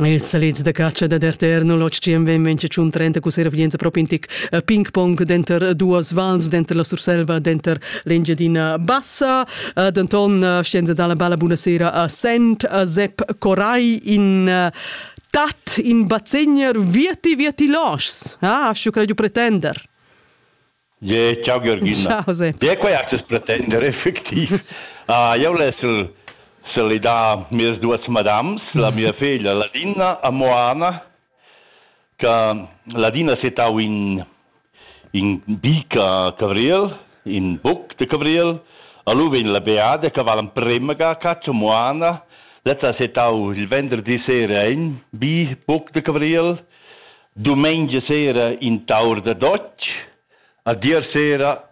Il salid da catscha dad RTR 0HCM vegn mengia tschun trenta cu servglienza pro pintic a ping-pong denter duas vals, denter la Surselva denter l'Engiadina Bassa. Uh, denton uh, scienza dalla balla buna sera a Sent, a Sepp Coray in uh, tat in bazegner vieti vieti loschs. Ah, schu crei pretender. Ge, ciao Georgina. Ciao Sepp. Ge, quai has pretender effectiv. Ah, io les salidar mes duas madams, la mia figlia Ladina a Moana, che Ladina setau in, in bica Cabriel, in buc de Cabriel, alu vegn la beada che vala premega caccia Moana, lezza setau il venerdì sera in bi buc de Cabriel, Dumengia sera in taur da dotg, a dir sera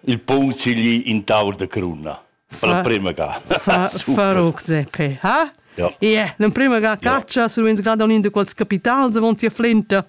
il punzigli in taur da cruna. Per la prima ga. Fa, faruc zepe, ha? Ja. Ie, l'emprima ga caccia, su vens grada un de quals capitals avon tia flenta.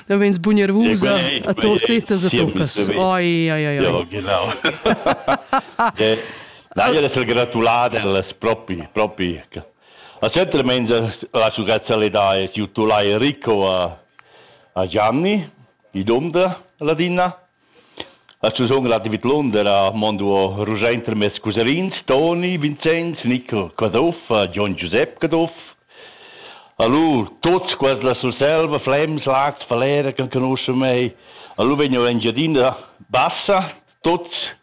Da vens bugnarvusa a torsetas a toccas. Oi, oi, oi. Ja, genau. Ja, na, io le gratulate, alles propi, propi. Recentemente la successialità es gnütula Enrico a a Gianni, di Dunder ladina. As sun relativ londer a mondo rugiaint tra meis cuserins Toni, Vincenz, Nicol Caduff, Gion Giusep Caduff. Alur tuots quels la Surselva, Flems, Laz, Falera, che conoschan mei. Alur vegnu a Engiadina Bassa, tuots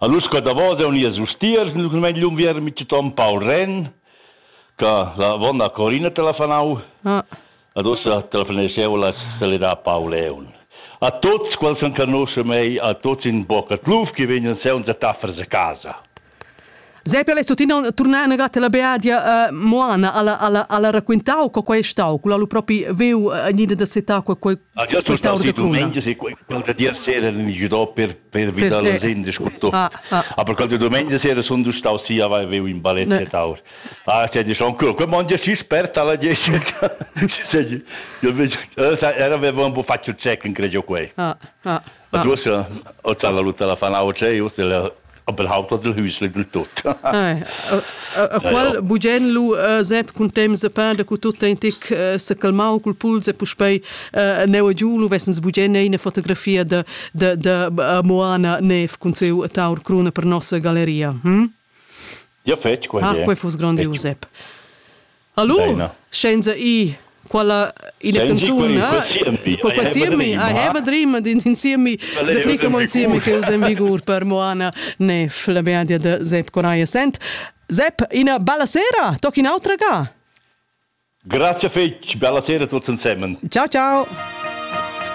Allura sco davos haun ies ustiers numnadamain lung vierm mitgiton Paul Renn che la vonna Corina te l'ha fanau ah. ad ussa te la faneseu la salidar Paul Leon. A tuts quels che conosce mei, a tuts in bocca tluf che vegnan seunza taffers a casa. Sei per lei tuttina tornar a negata la beadia uh, Moana alla alla alla raccontau co quei stau quella lu propi veu uh, niente da seta qua quei Ah, già sono stati domenica, sì, qualche dia sera in giro per, per Vidal per Sende scuto. Ah, ah. Aber qualche domenica sera sono stato sì, avevo in baletta ne. Tower. Ah, c'è diciamo ancora, quel monte si sperta alla Jessica. Io avevo un po' fatto check, credo quei. Ah, ah. Ed uossa ho già valutà la fanautscha e uossa l'he appelhau tuot il hüsli dil tut. A qual bugen lu Sep cun temps e pain da cu tut ein tic se calmau cul puls e puspei neu e giu lu vessens bugen eine fotografia da da da Moana Neef cun siu taur cruna per nossa galleria. Hm? Ja fetg quei. Ah, quei fuss grandius Sep. Hallo? Deina. Scienza i quella ina canzun po qua siemi I have a dream din insiemi de plica mon siemi che us en vigur per Moana ne la beadia de Zep Coraia Sent Zep ina bella sera toc in autra ga Grazie fetch bella sera tutti insieme Ciao ciao